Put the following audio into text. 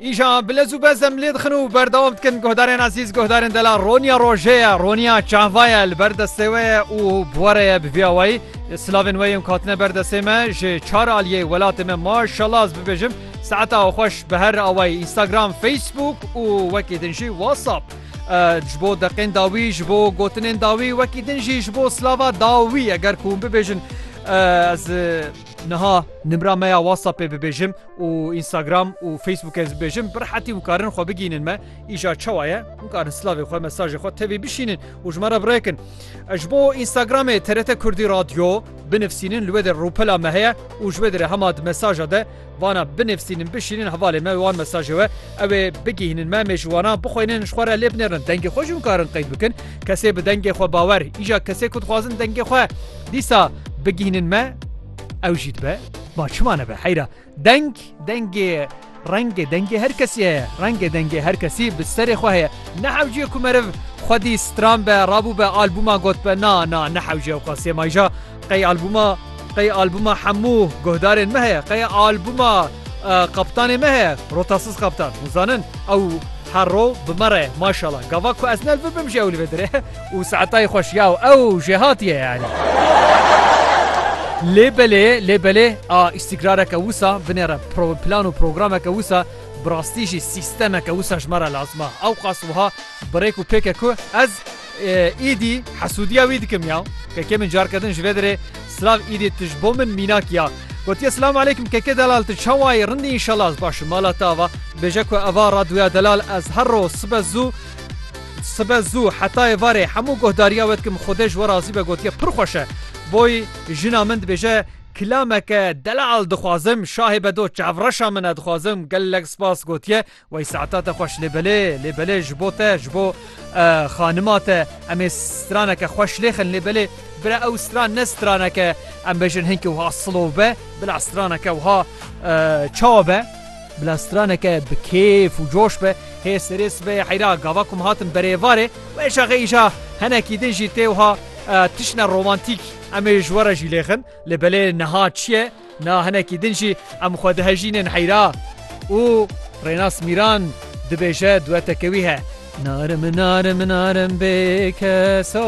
Îşan bi lez û bez em lê dixin û berdewam dikin. Guhdarên ezîz, guhdarên delal roniya rojê ye, roniya çava ye, li ber destê we ye û bi we re ye bi vî awayî. Silavên we yên ku hatine ber destê me ji çar aliyê welatê me maşallah ez bibêjim saeta xweş bi her awayî Instagram, Facebook û wekî din jî WhatsApp ji bo deqên dawî ji bo gotinên dawî wekî din jî ji bo silava dawî eger ku hûn bibêjin ez niha nimra me ya WhatsAppê bibêjim. û Instagram û Facebook ez bêjim bi rehetî hûn karin xwe bigînin me îşa çawa ye hûn karin slavê xwe mesajê xwe tevî bişînin û ji me re birekin ji bo Instagramê TRT Kurdî radyo binivîsînin li wê de rûpela me heye û ji wê dire hema di mesaja de vana binivîsînin bişînin hevalê me wan mesajê we ew ê bigihînin me mêjwana bixwênin ji xwe re lê binêrin dengê xwe jûn karin qeyd bikin kesê bi dengê xwe bawer îja kesê ku dixwazin dengê xwe dîsa bigihînin me Ew jî dibe ba çima nebe heyra deng dengê rengê dengê her kesî heye rengê dengê her kesî bi serê xwe heye nehewciyê ku meriv xwedî stran be rabû be albûma got be na na nehewciye xwe sêmayja qey albûma qey albûma hemû guhdarên me heye qey albûma qaptanê me heye rotasiz qaptan hûzanin ew herro bi me re maşala gava ku ez nel bibim ji ew li vê dire Û saetayê xweş ya û ew jê hatiye yanî. Lê belê, lê belê a îstîkrareke wisa binêre pro plan û programeke wisa bi rastî jî sîstemeke wisa ji me re lazim a. Ewqas wiha birêk û pêk e ku ez îdî hesûdiya wî dikim ya. Kekê min carke din ji vê derê silav îdî tu ji bo min mînak ya. Gotiye Silamu Eleykum Keke Delal tu çawa yî rindî înşallah ez baş î mala te ava. Bêje ku eva radyoya Delal ez her roj sibe zû Sibe zû heta êvarê hemû guhdariya we dikim Xwedê ji we razî be gotiye pir xweş e. Boy jina min dibêje Kilameke deleal dixwazim şahê be do çavreşa min e dixwazim gelek spas gotiye Wey saeta te xweş lê belê lê belê ji bo te ji bo xanima te em ê straneke xweş lê xin lê belê bira ew stran ne straneke em bêjin hinkî wiha silov be bila straneke wiha çawa be. Bila straneke bi kêf û coş be, hê serê sibehê heyra gava ku min hatin berê êvarê, wê şaxê îşa henekî din jî tê wiha tiştine romantîk. Em ê ji we re jî lêxin, lê belê niha çi ye? Na henekî din jî em xwe dihejînin heyra û Rênas Mîran dibêje dueteke wî he, Narim narim narim bêkeso.